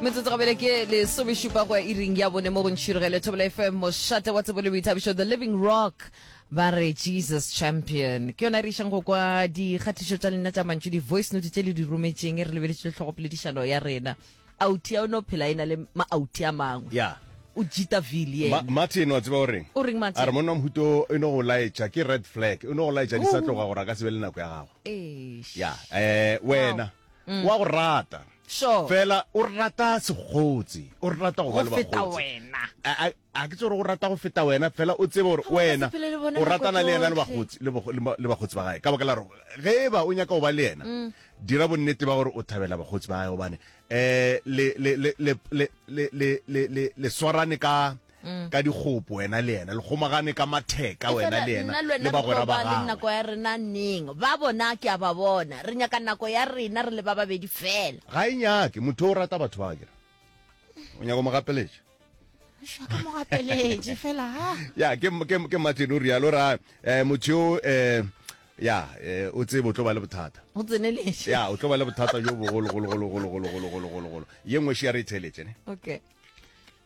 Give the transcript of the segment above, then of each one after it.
metsotso gabele ke lesomešupa go ya iring ya bone mo go ntšhirigele thobela fm mošate wa tsebo le boithabišo the living rock ba re jesus champion ke yona re išang go kwa dikgatišo tša lena tša mantšu di-voice note tše le di rometšeng e re lebeletše tlhogopoledišano ya rena auti ya o ne o phela e na le maauti a mangwe ya o jita ville Ma- yena martin wa tseba o reng O reng, Martin? a re monna mohuto e no go laetša ke red flag e no go laetša di sa tloga gore a ka se be le nako ya gago Eish. ya um wena mm. wa go rata sure. fela o rata segotsi o rata go ba le bagotsi a ke tsore o rata go feta wena fela o tsebe gore wena o ratana le ena le bagotsi le bagotsi ba gae ka baka la gore ge e ba o nyaka go ba le ena mm. dira bonnete ba gore o thabela bagotsi ba gae gobane um le swarane ka mm. ka dikgopo wena le yena le kgomagane ka matheka wena le yena le bagwera ba gago nako ya rena neng ba bona ke a ba bona re nyaka nako ya rena re le ba babedi fela ga e nyake motho o rata batho ba kere o nyaka mo gapeletša ke mo gapeletše fela ha ya ke ke ke matleno rialo ra eh motho eh ya eh, o tsebe o tlo ba le bothata o tseneletse ya o tlo ba le bothata jo bogologologologologologologologolo ye nngwe še ya re e theletše ne okay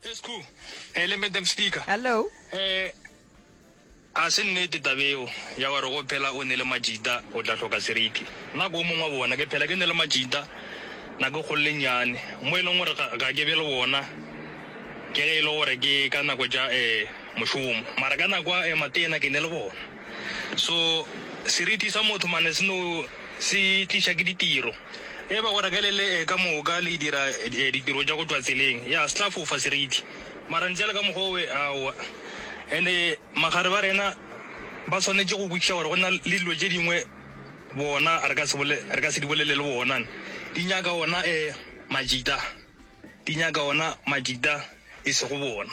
Esku, eh, le madam speaker. Hello. Eh, a se nnete tabeo ya gore go phela o ne le majita o tla hloka seriti nna ko mongwe wa bona ke phela ke ne le majita na ke kgolole nyane mo e leng gore ga ke be le bona ke ge e le gore ke ka nako ja um mošomo mara ka nako ya matena ke ne le bona So seriti sa motho mane se no se tliša ke ditiro. E ba gore ge le le ka moka le dira ditiro tša go tšwa tseleng, ya se tla fofa seriti. Mara ntše le ka mokgwa owe, aowa. And-e magare ba rena ba swanetše go kwešiša gore go na le dilo tše dingwe bona re ka se bole, re ka se di bolele le bona. Di nyaka ona majita, di nyaka ona majita e sego bona.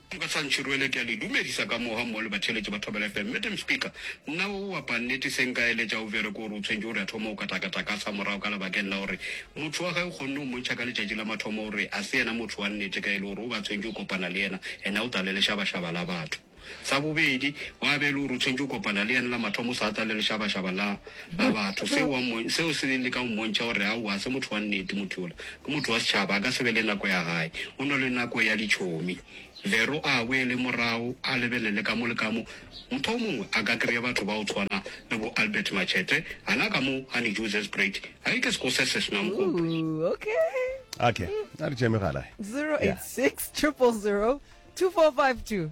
Dibasantšhi Rwele, ke a le dumedisa ka moga mmogo le batheeletši ba Thobela FM. Madam Speaker, nna o wa pannete se nka eletša o vere ke gore o tshwentše gore a thome o katakata ka sa morago ka labakeng la gore motho wa gage kgonne o mmontšha ka letšatši la mathomo gore a se yena motho wa nnete ka e le gore o ba tshwentše o kopana le yena and a o tla le lešabašaba la batho. Sa bobedi, wa be e le gore o tshwentše o kopana le yena la mathomo o sa tla le lešabašaba la ba batho. Seo wa mmo, seo se leng leka go mmontšha gore, aowa, ga se motho wa nnete motho yola. Ke motho wa setšhaba, a ka se be le nako ya gae. O na le nako ya ditšhomi. Vero a boele morago a lebelele ka mo le ka mo. Motho o mongwe a ka kry-a batho ba go tshwana le bo Albert Machete, gana ka mo Honey Jews as great. Hai ke seko se se senang gope. Ooh, okay. Okay, a re tšee megala. 086 000 2452.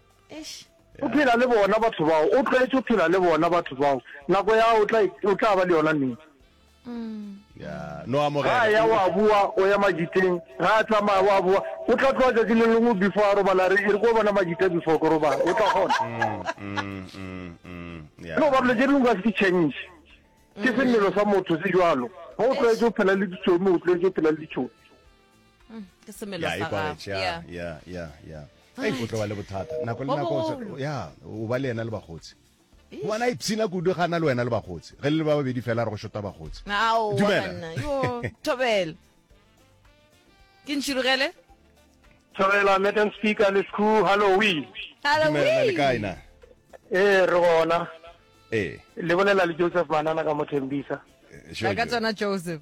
Eish. O phela le bona batho bao, o tlwaetse go phela le bona batho bao. Nako ya o tla o tla ba le yona neng? ya no Ga amogela ya wa boa o ya majiteng, ga a tsamaya wa boa. O tla tloga tšatši le lengwe before a robala re e re ko bona majita before ke robala. O tla kgona. Mm, mm, mm, ya. No ba dilo tše dingwe ka se di change. Ke semelo sa motho se jwalo. Ga o tlwaetse go phela le ditšomi, o tlwaetse go phela le ditšomi. mm, ke semelo sa gago yeah yeah yeah yeah ai go tlo ba le bothata nako le nako ya o ba le yena le bagotsi ngwana a ipshina kudu ga na le wena le bagotsi ge le ba babedi fela re go shota bagotsi tobele ke ntšhirogele tobela madam speaker le school halloween dumela le kae na ee re gona ee le bolela le joseph manana ka mothembisa eh, ka tsona joseph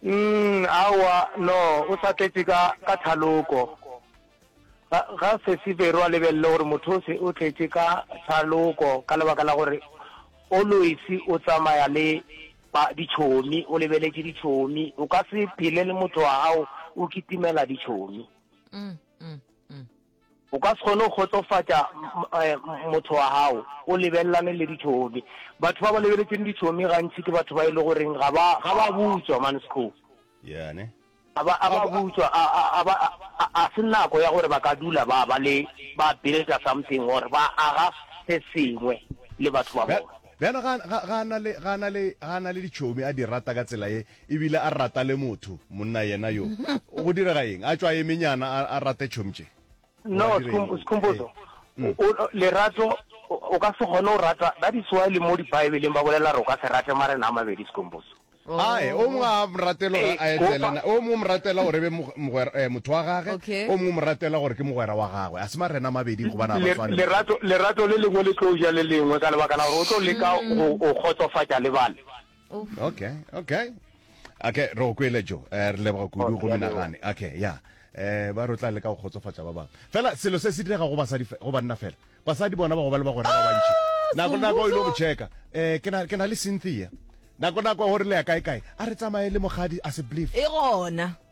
Umm aowa no o sa tletše ka ka thaloko. Ga ga sesi Vero a lebelele gore motho o se o tletše ka thaloko ka lebaka la gore always o tsamaya le ba ditšhomi o lebeletše ditšhomi o ka se phele le motho wa gago o kitimela ditšhomi. O ka se kgone go kgotsofatša motho wa gago o lebelelane le ditšhomi. Batho ba ba lebeletšeng ditšhomi gantši ke batho ba e le goreng ga ba ga ba butšwa mansco. Yeah, ne? A ba a ba butšwa a a a ba a a a se nako ya gore ba ka dula ba ba le ba builder something or ba aga se sengwe le batho ba Bja- bona. Bjalo ga ga ga a na le ga a na le ga a na le ditšhomi a di rata ka tsela ye E bile a rata le motho, monna yena yo. Go direga eng? A tšwa a eme nyana, a, a rate Chomche. No, Skhum-, Skhumbuzo. Eh. O, o, lerato, o, o ka se kgone go rata, that is why le mo Dibaebeleng ba bolela gore o ka se rate marena a mabedi, Skhumbuzo. Ae, o mongwe a mo ratele gore a etele na, o mongwe o mo ratela gore e be mog-, mogwer-, eh, motho wa gage, Okay. o mongwe o mo ratela gore ke mogwera wa gagwe. A se marena a mabedi gobane ga ba Le, swane. lerato, lerato le lengwe le tlo ja le lengwe ka lebaka la gore o tlo leka go, go kgotsofatša le bale. okay okay okay re go kwele jo eh, re leboga kudu go menagane okay ya eh ba rotla le ka go kgotsofatsa ba bangwe fela selo se se direga go basadi go banna fela basadi bona ba go ba le ba gore ba bantši nako nako ile go checka eh ke na ke na le Cynthia nako nako gore le ya kae kae a re tsamaye le mogadi a se believe e gona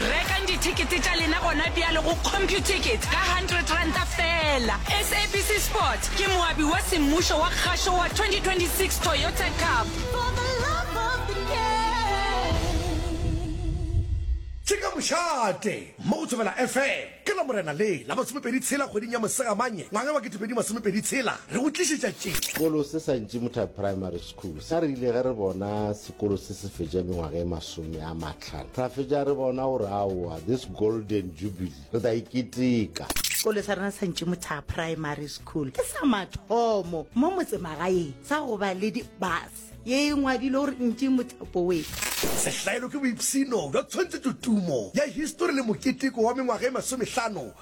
Rekang dithekete tša lena gona bjale go Computicket ka hundred ranta feela. SABC Sport ke moabi wa semmušo wa kgašo wa 2026 Toyota Cup. For the love of the game. Ke ka mošate mo go Thobela FM ka Lamorena le la masomepedi tshela kgweding ya Mosegamanye ngwaga wa kete pedi masomepedi tshela re go tlišetša tše. Sekolo se sa Ntšimutha Primary Sa re ile ge re bona sekolo se se fetša mengwaga e masome a matlhano ra fetša re bona gore aowa this golden jubilee re tla e keteka. Sekolo sa rena sa Ntšimothaga Primary School ke sa mathomo mo motsemagaeng sa go ba le di-bus ye e ngwadilwe gore Ntšimotha Boys. Sehlaelo ke boipshino bja tshwantshetšotumo ya histori le moketeko wa mengwaga e masomehlano